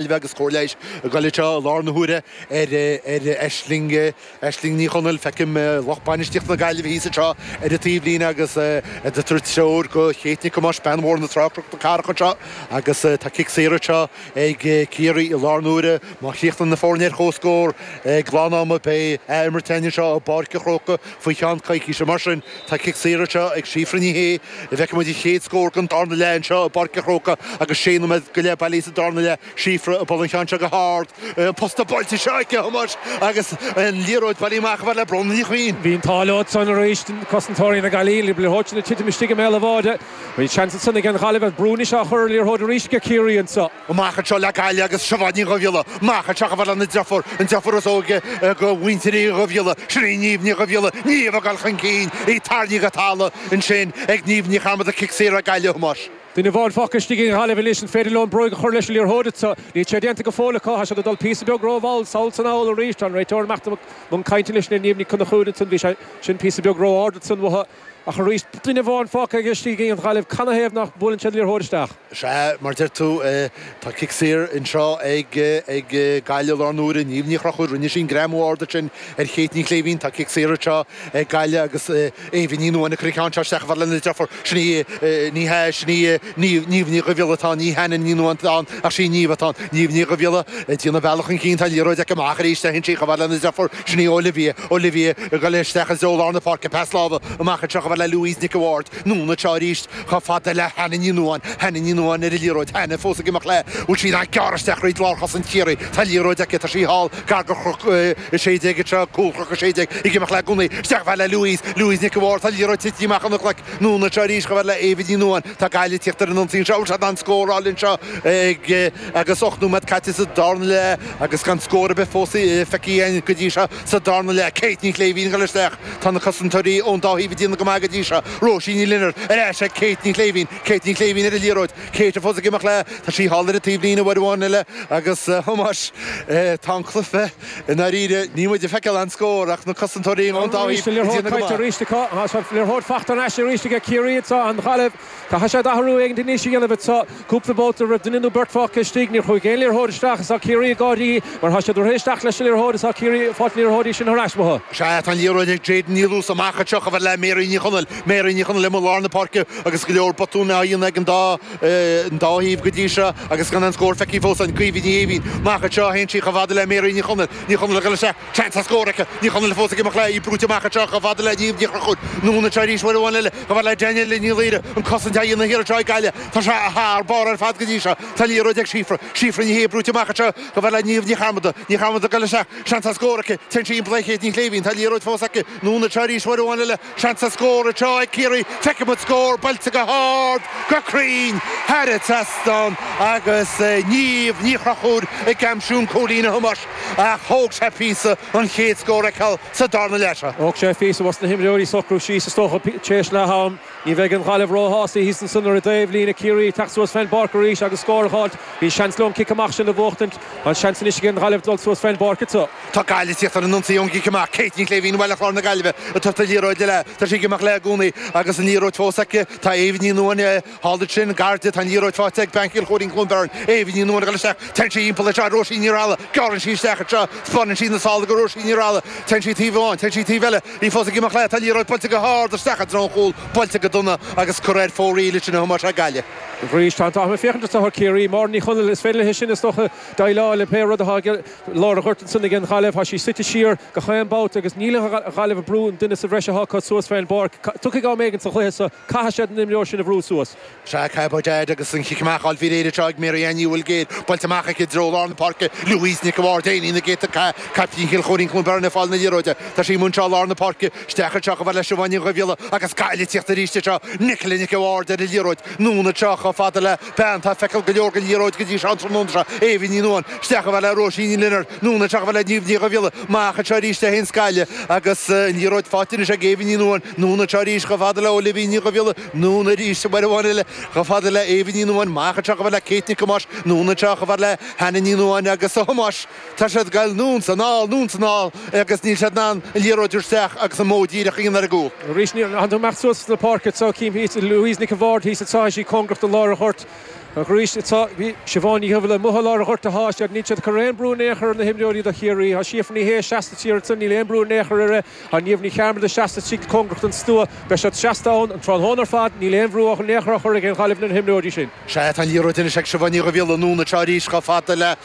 Ailbhe agus chomh leis an gcoillidh seo i lár na huaire ar Aisling, Aisling Ní Chonaill, feicim lucht bainistíochta na Gaillimhe thíos anseo ar an taobhlíne agus ag tabhairt treoir do Chéit Nic Thomáis, bean Bhóthar na Trá Chnoc na Cathrach anseo, agus tá cic saor anseo ag Ciarraí i lár na huaire. Má chríochnaíonn na foirne ar comhscór ag lán-ama, beidh ath-imirt againn anseo i bPáirc an Chrócaigh faoi cheann coicíse. Mar sin, tá cic saor anseo ag Síofra Ní Shé. an bhfeicfidh muid an chéad scór den darna leath anseo i bPáirc a' Chróca agus sé nóiméad go leith bailithe sa darna leath, Síofra ag bualadh an cheann seo go hard, an posta buailte anseo aici, a Thomáis, agus an liathróid bailithe amach chomh fada le Bróna Ní Chuinn. Bhí an t-ádh leo ansan arís, cosantóirí na Gaillimhe, leis an liathróid san ag titim istigh i mbéal a' bháide. Bhí seans ansan ag an Ghaillimh, ach brú anois á chur ar an liathróid arís ag Ciarraí anseo. amach anseo le Gaillimh agus Siobhán Ní Dhubhghiolla amach anseo chomh fada lena deirfiúr, an deirfiúr is óige ag mhuintir Uí Dhubhghiolla, sin í Niamh Ní Dhubhghiolla, Niamh ag dul chun cinn, í tarraingthe go talamh ansin ag Niamh Ní Chearmada, cic saor ag Gaillimh, Thomáis. Duine amháin fágtha istigh ag an Ghaillimh anois, an féidir leo bróig a chur leis an liathróid so? Níl sé déanta go fóill acu, tá siad ag dul píosa beag rómhall sall is anall arís, tá an réiteoir amach chun cainte anois le Niamh Ní Chonchúir ansan, bhí sé sin píosa beag ró-ard ansan uathu, Ach arís, duine amháin fágtha istigh ag an Ghaillimh, canathaobh nach mbuaileann siad liathróid isteach? Sea, mar a deir tú, tá cic saor anseo ag Gaillimh i lár an uaire. Niamh Ní Chonchúir, rinne sí an greamú ard ansin ar Chéit Ní Chléibhín. Tá cic saor anseo ag Gaillimh agus Éabha Ní Nuáin ag cur an cheann seo isteach chomh fada lena deirfiúr. Sin í Ní hea, sin í Niamh, Niamh Ní Dhubhghiolla atá ann, ní Hannah Ní Nuáin atá ann ach sí Niamh atá ann. Niamh Ní Dhubhghiolla ag déanamh a bealach chun cinn, tá an liathróid aici, amach arís, théann sí chomh fada lena deirfiúr. Sin í Olivia, Olivia, ag goil isteach anseo i lár na páirce, pas láimhe amach anseo chomh fada le Louise Nic a' Bháird, anonn anseo arís chomh fada le Hannah Ní Nuáin, Hannah Ní Nuáin ar an liathróid, Hannah fós ag imeacht léi, bhfuil sí in ann gearradh isteach thríd lár chosaint Chiarraí, tá an liathróid aici, tá sí thall gar do Chnoc a 16 anseo, cúl Chnoc a 16 ag imeacht léi i gcónaí, isteach chomh fada le Louise, Louise Nic a' Bháird, tá an liathróid tite amach óna glaic, anonn anseo arís chomh fada le Éabha Ní Nuáin, tá Gaillimh ag tíocht ar an ionsaí anseo, bhfuil siad in ann scóráil anseo ag. agus ocht nóiméad caite sa darna leath agus gan scór ar bith fós feicthe a'inn go dtí seo sa darna leath. Kate Ní Chléibhín ag dul isteach. Tá na cosantóirí ón dá thaobh ag déanamh go maith go dtí seo. Róisín Ní Lionáird ar ais ag Kate Ní Chléibhín. Kate Ní Chléibhín ar an liathróid. Kate fós ag imeacht léi. Tá sí thall ar an taobh líne uair amháin eile agus Thomáis tá an cluiche i ndáiríre. Níl muid ag feiceáil aon scór ach na cosantóirí ón dá thaobh ag déanamh go maith. Caithfidh siad athrú éigin anois a dhéanamh anseo. Cúpla babhta raibh duine nó beirt fágtha istigh, níor chuaigh aon liathróid isteach is tá Ciarraí ag gáirí, mar tá siad ag rith isteach leis an liathróid is tá Ciarraí ag fáilt na liathróidí sin thar ais uathu. Sea, tá an liathróid ag Jadyn Ní Luasa amach anseo, chomh fada le Mary Ní Chonaill. Mary Ní Chonaill amuigh i lár na páirce agus go leor botúin á dhéanamh ag an dá an dá thaobh go dtí seo agus gan aon scór feicthe fós a'inn. Caoimhe Ní Éimhín amach anseo, théann sí chomh fada le Mary Ní Chonaill. Ní Chonaill ag dul isteach. Seans ar scór aici. Ní Chonaill fós ag imeacht léi, brúite amach anseo chomh fada le Niamh Ní Chonchúir. Anonn anseo arís uair amháin eile chomh fada le Danielle Ní Laoire an cosaint á dhéanamh thiar anseo ag Gaillimh. Tá sé thar barr ar fad go dtí seo. Tá an liathróid ag Síofra. Síofra Ní Shé brúite amach anseo chomh fada le Niamh Ní Chearmada. Ní Chearmada ag dul léi isteach. Seans ar scór aici. Téann sí thimpeall ar Kate Ní Shléibhín. Tá an liathróid fós aici. Anonn anseo arís uair amháin eile. Seans scóir atá ag Ciarraí. Feicfimid an scór buailte go hard, go cruinn, thar an trasnán agus Niamh Ní Chonchúir ag aimsiú an cúilín a Thomáis ach thóg sé píosa an chéad scór a fheiceáil sa darna leath. Thóg sé píosa dos na himreoirí socrú síos is dócha tar éis leath-am. Ní bheidh an Ghaillimh róshásta thíos ansan ar an dtaobhlíne, Ciarraí ag teacht suas fén bpáirc arís agus scór a fháilt. Bhí seans leo an cic amach sin a bhuachtaint. An seans anois ag an Ghaillimh dul suas fén bpáirc? Tá Gaillimh ag tíocht ar an ionsaí ón gcic amach, Kate Ní Shléibhín ó Bhaile Chláir na Gaillimhe ag tabhairt an liathróid léi. Tá sí ag imeacht léi i gcónaí agus an liathróid fós aici. Tá Eva Ní Nuadháin thall ansin, gar di. Tá an liathróid faighte ag bean Chill Choirín, Cluain Bheirn, Eva Ní Nuadháin ag dul isteach. Téann sí thimpeall anseo ar Róisín Ní Rathaille. Gearrann sí isteach anseo. Spáineann sí na sála do Róisín Ní Rathaille. Téann sí taobh amháin. Téann sí taobh eile. Í fós ag imeacht léi. Tá an liathróid buailte go hard isteach i dtreo an chúil. Buailte go dona agus curtha ar fóraoil ansin a Thomáis Ó hIceadha. Arís tá an t-ádh orm féachaint ar shaothar Ciarraí. Máire Ní Chonaill, is féidir léi sin, is dócha, déileáil le pé rud atá ag. Lár an ghoirt ansan ag an Ghaillimh. Tá sí suite siar gach aon babhta agus níl an Ghaillimh ag brú an duine sa bhreis atá acu suas fén bpáirc. Tiocfaidh am éigin sa chluiche seo caithfidh siad an imreoir sin a bhrú suas. Sea, caithfidh Bud Aidh agus an cic amach a fháil thiar anseo ag Mary Ellen Ní Bhuilgéir. Buailte amach aici i dtreo lár na páirce. Louise Nic a' Bhaird, bean na gcéadta cath, caiptín Chill Choirín Cluain Bheirn ag fáil na liathróide. Tá sí amuigh anseo lár na páirce. Isteach anseo chomh fada le Siobhán Ní Dhubhghiolla agus Gaillimh ag tíocht arís anseo. Nicola Nic a' Bhaird ar an liathróid. Anonn anseo chomh fada le. bean atá ag feiceáil go leor den liathróid go dtí seo an tráthnóna seo, Eva Ní Nuadháin, isteach chomh fada le Róisín Ní Lionáird, anonn anseo chomh fada le Niamh Ní Dhubhghiolla, amach anseo arís le hEoin Scalia agus an liathróid faighte anois ag Eva Ní Nuadháin, anonn anseo arís chomh fada le Olivia Ní Dhubhghiolla, anonn arís, uair amháin eile, chomh fada le Eva Ní Nuadháin, amach anseo chomh fada le Kate Nic Thomáis, anonn anseo chomh fada le Hannah Ní Nuadháin agus a Thomáis. Tá siad ag gabháil anonn is anall, anonn is anall, agus níl siad in ann an liathróid a chur isteach agus an modh díreach a dhéanamh ar an gcúl. Arís, níor fhan tú amach suas sna páirceanna atá chím thíos. Louise Nic a Bhaird thíos atá thíos, í cóngarach do lár an ghoirt. Agus tá Siobhán Ní Dhubhghiolla amuigh thar lár an ghoirt a sháith isteach. Níl siad ag cur aon brú in aon chor ar na himreoirí do Chiarraí. Tá Síofra Ní Shé seasta thiar ansan, níl aon brú in aon chor uirthi. Ar Niamh Ní Chearmada, seasta istigh cóngarach don stua, beidh siad seasta ann an tráthnóna ar fad, níl aon bhrú in aon chor á chur ag an Ghaillimh ar na himreoirí sin. Sea, tá an liathróid anois ag Siobhán Ní Dhubhghiolla, anonn anseo arís chomh fada le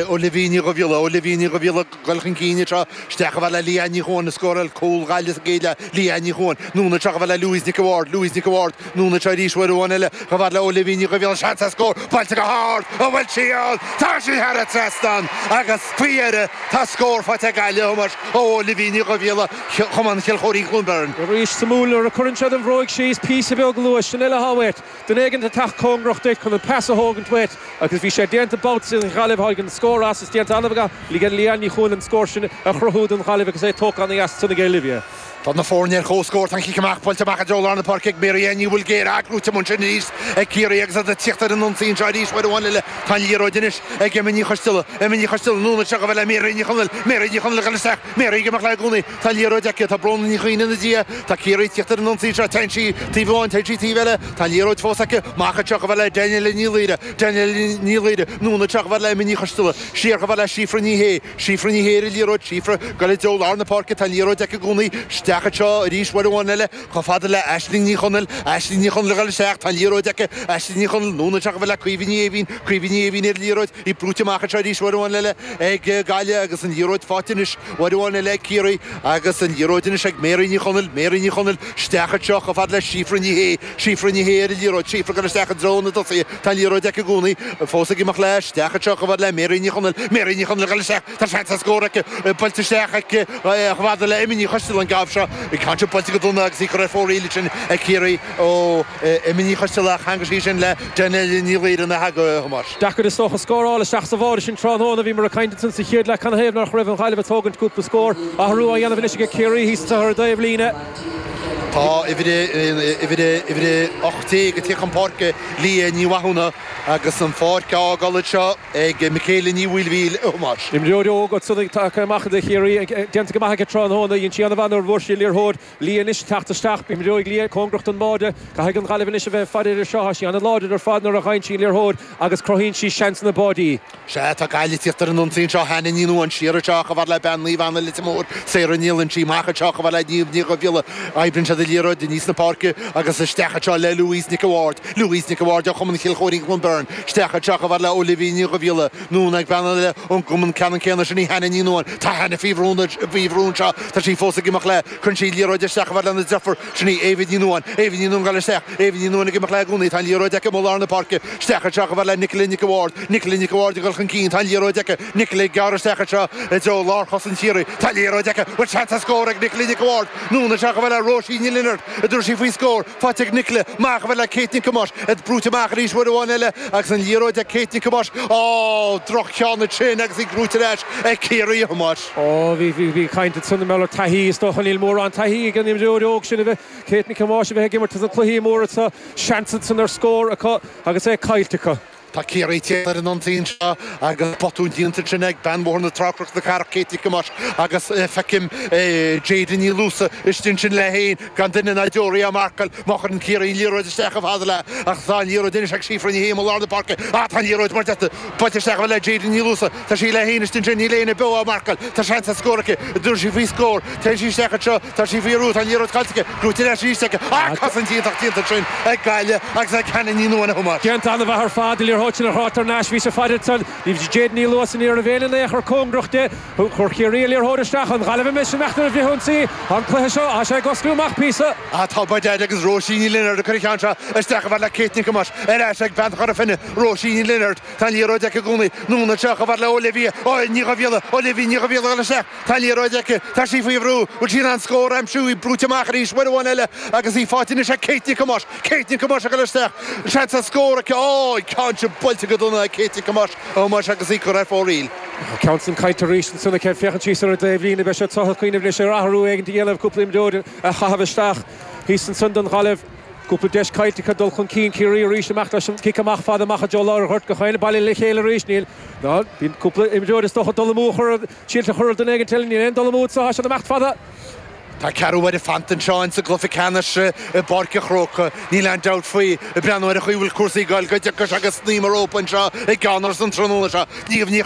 Olivia Ní Dhubhghiolla, Olivia Ní Dhubhghiolla, ag dul chun cinn anseo, isteach chomh fada le Leanne Ní Chuan, a scóráil cúl do Ghaillimh sa gcéad leath, Leanne Ní Chuan, anonn anseo chomh fada le Louise Nic a' Bhaird, Louise Nic a' Bhaird, Anonn anseo arís uair amháin eile, chomh fada le Olivia Ní Dhubhghiolla an seans ar scór buailte go hard an bhfuil sí ann. Tá sí thar an trasnán agus faoi dheireadh tá scór faighte ag Gaillimh a Thomáis ó Olivia Ní Dhubhghiolla, Cumann Chill Choirín Chluain Bheirn. Arís suimiúil nuair a chuireann siad an bhróig síos píosa beag luais san uile thábhacht, duine éigint ag teacht cóngarach duit chun an pas a thógaint uait agus bhí sé déanta babhta sin an Ghaillimh tháinig an scór as, is déanta an-mhaith ag Leanne Ní Chualáin an scór sin a chruthú don Ghaillimh agus é tógtha an-dheas ansin ag Olivia. Tá na foirne ar comhscór tá an cic amach buailte amach i dtreo lár na páirce ag Mary Ellen Ní Bhuilgéir ach buaite ansin arís ag Ciarraí agus iad ag tíocht ar an ionsaí anseo arís uair amháin eile. Tá an liathróid anois ag Emma Ní Choisteala. Emma Ní Choisteala, anonn anseo chomh fada le Mary Ní Chonaill. Mary Ní Chonaill ag dul isteach. Mary ag imeacht léi i gcónaí. Tá an liathróid aici. Tá Bróna Ní Chuinn ina diaidh. Tá Ciarraí ag tíocht ar an ionsaí anseo. Téann sí taobh amháin. Téann sí taobh eile. Tá an liathróid fós aici. Amach anseo chomh fada le Danielle Ní Laoire. Danielle Ní Laoire, anonn anseo chomh fada le Emma Ní Choisteala. Siar chomh fada le Síofra Ní Shé. Síofra Ní Shé ar an liathróid, Síofra ag goil i dtreo lár na páirce, tá an liathróid aici i gcónaí isteach anseo arís uair amháin eile chomh fada le Aisling Ní Chonaill, Aisling Ní Chonaill, ag goil isteach, tá an liathróid aici, Aisling Ní Chonaill, anonn isteach chomh fada le Caoimhe Ní Aoibhinn, Caoimhe Ní Aoibhinn, ar an liathróid, í brúite amach anseo arís uair amháin eile ag Gaillimh agus an liathróid faighte anois uair amháin eile ag Ciarraí agus an liathróid anois ag Mary Ní Chonaill, Mary Ní Chonaill, isteach anseo chomh fada le Síofra Ní Shé. Síofra Ní Shé ar an liathróid, Síofra ag goil isteach i dtreo na dtosaithe, tá an liathróid aici i gcónaí, fós ag imeacht leis, isteach anseo chomh fada le Mary Ní Chonaill, Mary Ní Chonaill ag goil isteach, tá seans ar scór aici, buailte isteach aici chomh fada le Emma Ní Choisteala an babhta seo, ag caint ar buailte go dona agus í curtha ar fóraoil ansin ag Ciarraí, ó, Emma Ní Choisteala cheangail sí ansin le Danielle Ní Laoire nach ea, a Thomáis. Deacair is dócha scóráil isteach sa bháide ansin tráthnóna bhíomar ag caint ansan sa chéad leath, canathaobh nach raibh an Ghaillimh ag tógaint cúpla scór, athrú á dhéanamh anois aige Ciarraí thíos anso ar an dtaobhlíne. Tá uimhir a 18 ag teacht chun páirce, Liadh Ní Mhathúna, agus an pháirc á fhágáil anseo ag Michaela Ní Mhaoilmhíl, a Thomáis. Imreoir óg ansan ag teacht amach do Chiarraí, déanta go maith aici tráthnóna. Dhein sí an-mhaith nuair a bhuaigh sí an liathróid. Liadh anois ag teacht isteach. Imreoidh Liadh cóngarach don mbáide. Caithfidh an Ghaillimh anois a bheith ag faire air seo. Tá sí an-láidir ar fad nuair a fhaigheann sí an liathróid agus cruthaíonn sí seansanna báidí. Sea, tá Gaillimh ag tíocht ar an ionsaí anseo, Hannah Ní Nuadháin, siar anseo chomh fada le bean Naomh Anna, Leitir Móir, Sarah Ní Loinsigh, amach anseo chomh fada le Niamh Ní Dhubhghiolla, oibríonn siad an liathróid aníos na páirce, agus isteach anseo le Louise Nic a' Bhaird, Louise Nic a' Bhaird ó Chumann Chill Choirín Chluain Bheirn, isteach anseo chomh fada le Olivia Ní Dhubhghiolla, anonn chuig bean eile ón gcumann ceannann céanna sin í Hannah Ní Nuadháin, tá Hannah faoi bhrú anseo, tá sí fós ag imeacht léi cuireann sí an liathróid isteach chomh fada lena deirfiúr, Sin í Eva Ní Nuadháin, Eva Ní Nuadháin ag goil isteach, Eva Ní Nuadháin ag imeacht léi i gcónaí, tá an liathróid aici amuigh i lár na páirce, isteach anseo chomh fada le Nicola Nic a' Bháird, Nicola Nic a' Bháird ag dul chun cinn, tá an liathróid aici, Nicola ag gearradh isteach anseo i dtreo lár chosaint Chiarraí, tá an liathróid aici, an bhfuil seans ar scór ag Nicola Nic a' Bháird, anonn anseo chomh fada le Róisín Ní Lionaird, an dtabharfaidh sí faoin scór, faighte ag Nicola, amach chomh fada le Kate Nic Thomáis, í brúite amach arís uair amháin eile agus an liathróid ag Kate Nic Thomáis, ó, droch-cheann ansin agus í buaite ar ais ag Ciarraí, a Thomáis. Ó, bhí, bhí, bhí caint ansan mar gheall ar taithí, is dócha. Níl mórán taithí ag an imreoir óg sin a bheith, Kate Nic Thomáis, a bheith ag imirt ins na cluichí móra seo. Seans ansan ar scór acu agus é caillte acu. Tá Ciarraí thíos ar an ionsaí anseo agus botún déanta ansin ag bean Bhóthar na Trá-Chnoc na Cathrach, Kate Nic Thomáis, agus feicim Jayden Ní Luasa istigh ansin léi féin, gan duine ná deoraí á marcáil. Má chuireann Ciarraí an liathróid isteach chomh fada léi, ach tá an liathróid anois ag Síofra Ní Shé i lár na páirce, á, tá an liathróid mar deirtear, buailte isteach chomh fada le Jayden Ní Luasa, Tá sí léi féin istigh ansin, níl éinne beo á marcáil, tá seans ar scór aici, a dúirt sí faoi scór. Téann sí isteach anseo, tá sí faoi bhrú, tá an liathróid caillte aici, buaite ar ais arís aici, ach cosaint iontach déanta ansin ag Gaillimh agus ag Hannah Ní Nuadhain a Thomáis. Déanta an-mhaith ar fad, an liathróid sin a thrácht thar n-ais, bhí sé faighte ansan ag Jayden Ní Luasa, ní raibh éinne in aon chor cóngarach di. Chuir Ciarraí an liathróid isteach. An Ghaillimh i misean ach nuair a bhritheadh an tslí, an cluiche seo, tá sé ag oscailt amach píosa. Tá by dad agus Róisín Ní Lionaird ag cur an cheann seo isteach chomh fada le Kate Nic Thomáis, ar ais ag bean Chora Finne, Róisín Ní Lionaird, Tá an liathróid aici i gcónaí. Anonn anseo chomh fada le Olivia Ní Dhuibhghiolla, Olivia Ní Dhuibhghiolla ag goil isteach, tá an liathróid aici. Tá sí faoi bhrú. Bhfuil sí in ann scór a aimsiú? Í brúite amach arís. Uair amháin eile agus í faighte anois ag Kate Nic Thomáis. Kate Nic Thomáis ag goil isteach. Seans ar scór aici. Á! Í caillte, buailte go dona ag Kate Nic Thomáis. A Thomáis agus í curtha ar fóraoil. An ceann sin caillte arís. Ansan aici. Féachann sí soir ar an dtaobhlíne. Beidh sé is dócha ag cuimhneamh anois ar athrú éigin a dhéanamh, cúpla imreoir a chaitheamh isteach thíos ansan don Ghaillimh. Cúpla deis caillte acu dul chun cinn. Ciarraí arís, amach leis an gcic amach fada amach i dtreo lár an ghoirt, go Chadhain, bailithe le chéile arís, níl, ná bíonn cúpla imreoir is dócha ag dul amú a chur, síolta a chur ar dhuine éigin eile, níl aon dul amú anseo, tá siad imeacht fada. Tá ceathrú uaire fanta anseo insa gcluiche ceannais i bPáirc a' Chrócaigh, níl aon dabht faoi, ag breathnú ar an chaoi a bhfuil cúrsaí ag goil go dtiocfaidh sé go snaidhm an rópa anseo i gCeannáras an tráthnóna seo. Niamh Ní